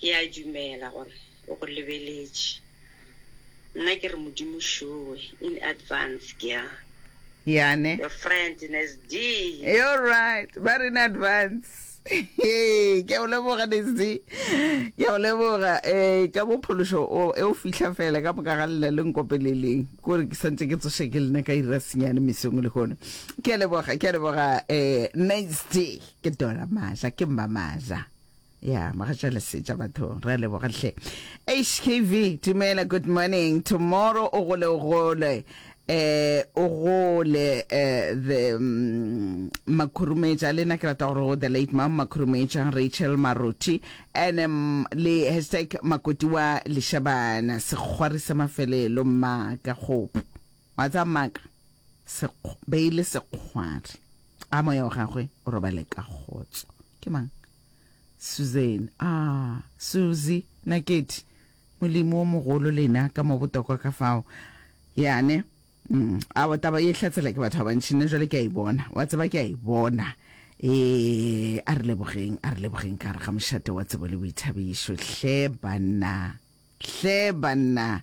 Ke a dumela gore o go lebeletše. Nna ke re Modimo šowe, in advance, ke a. Yane. Your friend in SD. You're right, ba re in advance. Hee, ke a o leboga NSD, ke a o leboga um ka mo phološo o e o fihla fela ka moka ga lela le nkopeleleng kore ke santse ke tsoše ke lena ka ira senyane mesong le gono ke a leboga ke a leboga um NSD ke dola maja ke mma maja ya mogatšale setša batho re a leboga hle hkv dumela good morning tomorrow o gole o gole eh o gole eh the mm, makhurumetša le nna ke rata gore go the late mam makhurumetša rachel maruti and um, le hashtag makoti wa lešabana sekgwari sa mafelelo mmaka kgopo wa tsa mmaka Sekg- beile sekgwari A moya wa gagwe o robale ka kgotso. Ke mang? Susan. A, Suzi, Nakedi, Molimo o mogolo lena ka mo botokwa ka fao. Yane. Mm, a wa taba ye hlatsela ke batho ba bantši, nna jwale ke a e bona. Wa tseba, ke a e bona. Ee, a re lebogeng, a re lebogeng ka gare ga mošate wa tsebo le boithabišo. Hle, banna. Hle, banna.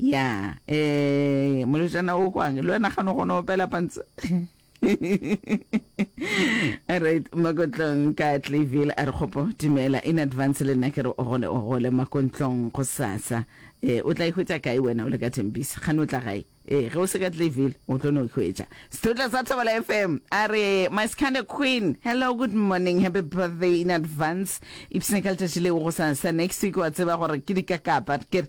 Ya, ee, molwetšana o kwang, le wena gane o kgona opela pantse. right makotlong ka clayville a re kgopo dumela in advance le nna ke re o gole o gole makontlong go sasa e o tla ihwetša kae wena o le ka thembisa gane o tla gae ee ge o se ka clayville o tlo no ihwetša sethotla sa thobela fm a re my scanda queen hello good morning happy birthday in advance ipsene ka letšatši leo go sasa next week wa tseba gore ke dikakapa ke